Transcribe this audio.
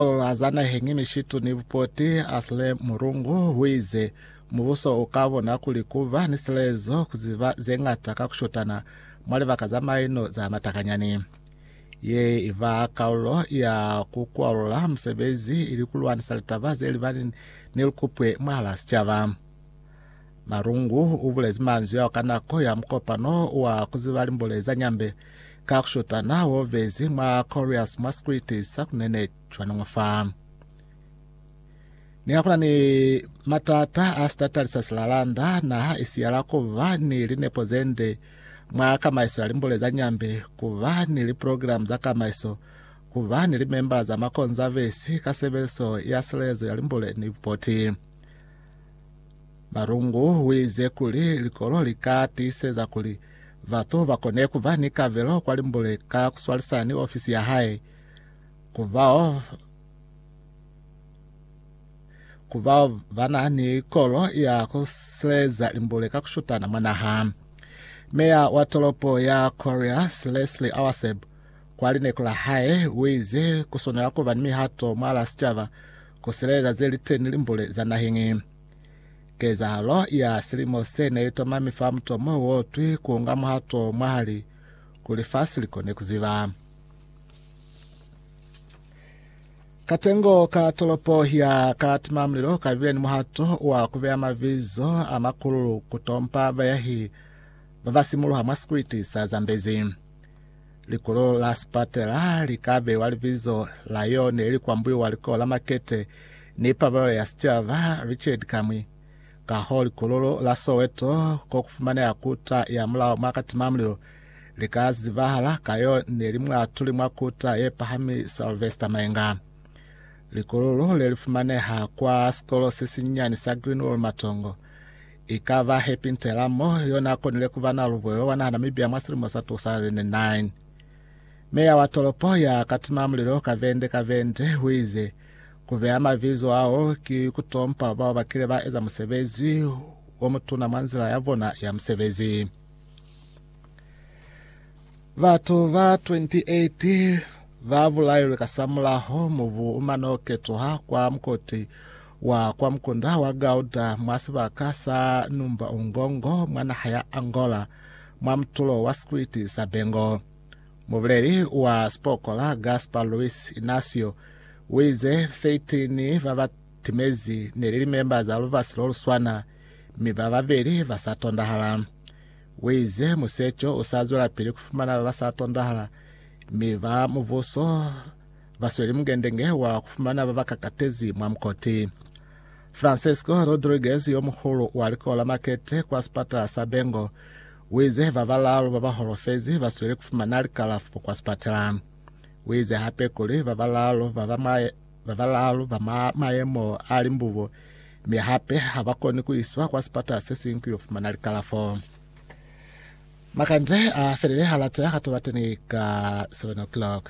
Ola za naheñi ni shitu ni bupoti asle mulungu huize mubuso uka bona kuli kuba ni silezo kuziba zeñata ka kushotana mwa libaka za maino za matakanyani. Ye iba kaulo ya kukwalula musebezi ili kulwanisa litaba zelibani ni lukupwe mwahala sicaba. Malungu ubulezi manzwi ao ka nako ya mukopano wa kuziba limbule za Nyambe Ka ku shotana ha wo bezi mwa Corious mwa sikriti sa ku nene cwaningo fa. Niha ku na ni matata a sitatali sa silalanda, naha i siyala ku ba ni linepo ze nde mwa kamaiso ya limbule za Nyambe, ku ba ni liprogilamu za kamaiso, ku ba ni limembala za makonzavesi ka sebeliso ya silelezo ya limbule ni bupoti. Marungu u ize kuli likolo li ka tiiseza kuli Batu ba kone ku ba ni kabelo kwa limbule ka ku swalisana ni ofisi ya hae. Ku bao ku bao ba na ni kolo ya ku sileza limbule ka ku shutana mwa naha. Meya wa tolopo ya Coryas, Leslie Awaseb, kwa lineku la hae u ize ku swanela ku ba ni mihato mwalaa sicaba ku sileza ze li teni limbule za naheñi. Kezahalo ya silimo se ne i tomami fa mutomo wo twi ku nga muhato mwahali ku lifasi li kone ku ziba. Katengo ka tolopo ya Katimamulilo ka bile ni muhato wa ku beya mabizo a makululu ku tompa bayahi ba ba simuluha mwa sikwiti sa Zambezi. Likulo la sipatela li ka beiwa libizo la yo ne li kwambuiwa Likulo la Makete ni Pabalelo ya Sicaba, Richard Kamwi. Kahoo, likulo la Soweto, ko ku fumaneha kuta ya mulao mwa Katimamlilo, li ka zibahala ka yo ne li muatuli mwa kuta ye pahami Sylvester Maenga. Likulo le li fumaneha kwa sikolo se sinyani sa Greenwall Matongo. Ikaba Happy Ntelamo yo n'a konile ku ba na lubuelo lwa naha Namibia mwa silimo sa 2009. Meya wa tolopo ya ka tima mulilo kabende kabende u ize, Ku beya mabizo ao ki ku tompa bao ba kile ba eza musebezi o mutuna mwa nzila ya bona ya musebezi. Batu ba 28 ba bulailwe kasamulaho mubu umano ketuha kwa mukoti wa kwa mukunda wa Gauda mwa sibaka sa numba Ungongo mwa naha ya Angola mwa mutulo wa sikwiti sa Bengo. Mubuleli wa sipokola Gaspar Luis Inacio uize 13 ba ba timezi neli limemba za lubasi loluswana mi ba babeli ba sa tondahala. Uize, Museco usa zwelapili kufumana babasa tondahala, mi ba mubuso basweli mugendenge wa kufumana babakakatezi mwa mukoti. Francisco Rodriguez, yomuhulu wa likolo la makete kwa sipatala sa Bengo, uize babalaalu babaholofezi basweli kufumana likalafo kwa sipatala. Uize hape kuli babalaalu baba mwa ba balaalu ba mwa mayemo a limbubo mi hape ha ba koni ku iswa kwa sipata se siñwi ku yo fumana likalafo. Makande a felele ha lata ka tobateni ka 7 o'clock.